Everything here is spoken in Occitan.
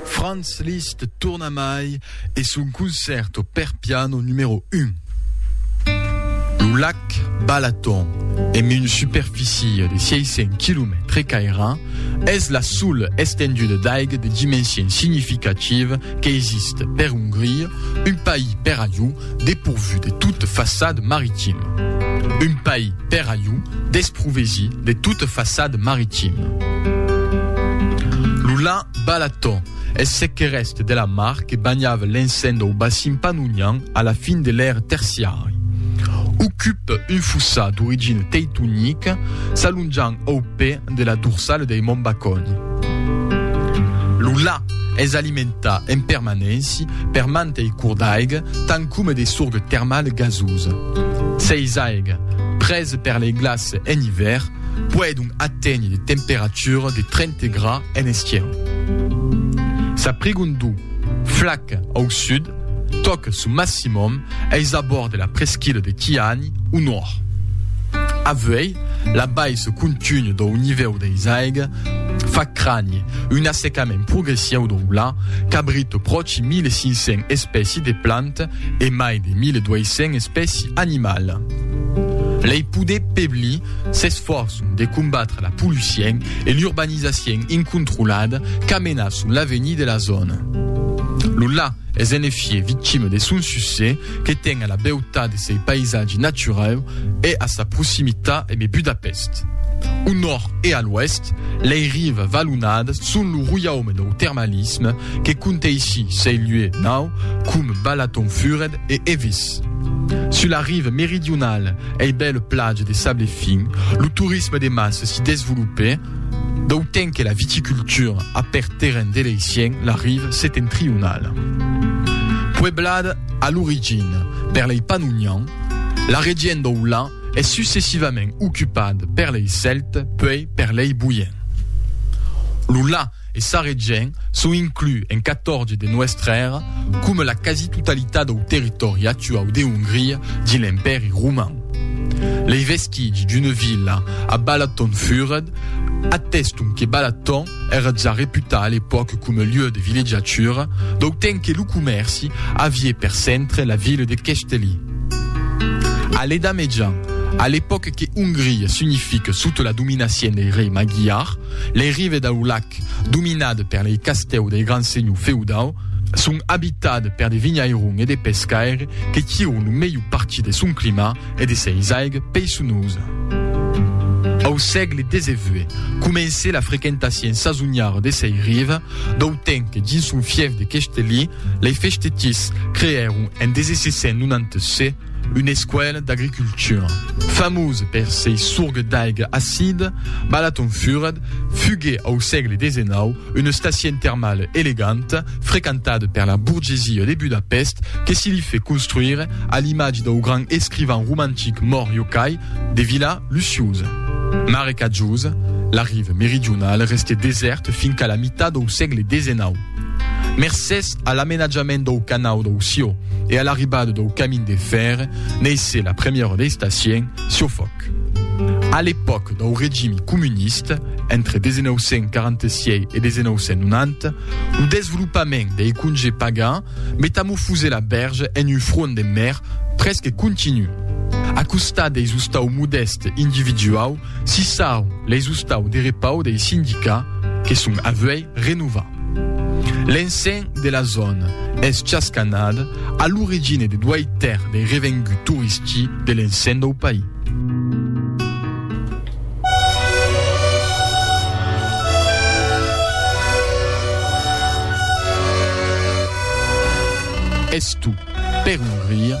Franz Liszt torna mai e son concerto per piano numero un. Lo lac Balaton, emb una superficie de 600 quilomètres caira, es la sola estenduda d'aiga de dimension significativa qu'existe per Ongria, un país per ajú, depourvu de toute façade maritime. Un país per a iu desprovesi de toute façade maritime. Lo lan Balaton es ce que rèste de la mar que banhava l'encend au bassin pannonian a la fin de l'ère terciari. Ocupe un fossat d'origine teitonica s'alonjant au pè de la dorsale dei Mont Baconi. Lo lan es alimentat en permanènci Per mantei cours d'aiga, tant coma de sorgue termale gasosa. Seis aiga, presa per lei glaces en ivèr, puèi donc aténher de temperatura de 30 gra en esquièr. Sa prigondor flaca au sud tòca son maximum eis abòrds de la presquila de Kiani au nòrd. Avuèi, la baissa continua dau nivèu deis aiga Fa crànher un assecament progressiu dau la cabrita pròchi 1.500 espèci de planta e mai de 1.200 espèci animala. Lei poder pebli s'esfòrçon de combatre la pollucien e l'urbanizacion incontrolada qu'a menat son l'avenir de la zòna. Lo la es en efier victima de son succès, que ten a la beutat de sei paisatge naturau e a sa proximita eme Budapest. Au nòrd e a l'oèst, lei rives valonadas son lo roiaume dau termalisme que conteissi sei lieu nau com Balatonfured e Evis. Sus la rive meridionala ei bèla platja de sable fin, lo torisme de massa si desvolopè, D'autant que la viticultura a per terren de l'Eissien la rive setentrionala. Pueblada a l'origina per lei Pannonian, la region dau Lan es successivament ocupada per lei Celtes puei per lei Boiens. Lo Lan e Sarregen son inclus en 14 de nuestra era, coma la quasi-totalitat dau territòri actuau de Hongria dins l'Empèri Roman. Lei vestigi d'una vila a Balatonfüred ateston que Balaton èra ja reputat a l'epòca coma lieu de villejatura, dau temps que lo comèrci aviá per centre la vila de Keszthely. A l'Edà Mejan, a l'epòca que Hongria s'unifica sota la dominacion dei rei magiar, Lei rives dau lac, dominades per lei castèus dei grands senhors feudaus, son abitades per de vinhairons e de pescaires que tiron lo melhor partit de son clima e de seis aigas peisonoses. Au sègle xix comencè la frequentacien sasoniara de sei rives, dau temps que dins son fièf de Questelí, lei festetiers creèron en 1696 Una escuèla d'agricultura, famosa per sei sorgues d'aiga acida, Balaton Furat, fugué au sègle xix una estacion termala eleganta, frequentada per la burgesia de Budapèst, que se li fait construire a l'imatge dau grand escrivan romantic mòrt Yokai, de vila luciosa. Marecatjosa, la riva meridionala restèt desèrta finqu'à la mitat dau sègle xix. Mercés a l'amenatjament dau canau dau Ció e a l'arribada dau camin de fèr, neissé la premièra dei stacien, Siofòc. A l'epòca dau regimi comunista, entre 1946 e 1990, lo desvolopament dei congé pagà metamofosé la bèrge en un front de mèr presque continu. A costat deis ostau modèst individuau, Si sau leis ostau de repau dei sindicats que son avuei renovar. L'encens de la zòna es chascanat a l'origina de duei tèrç dei revenguts toristi de l'encens dau país. Estu per un rir.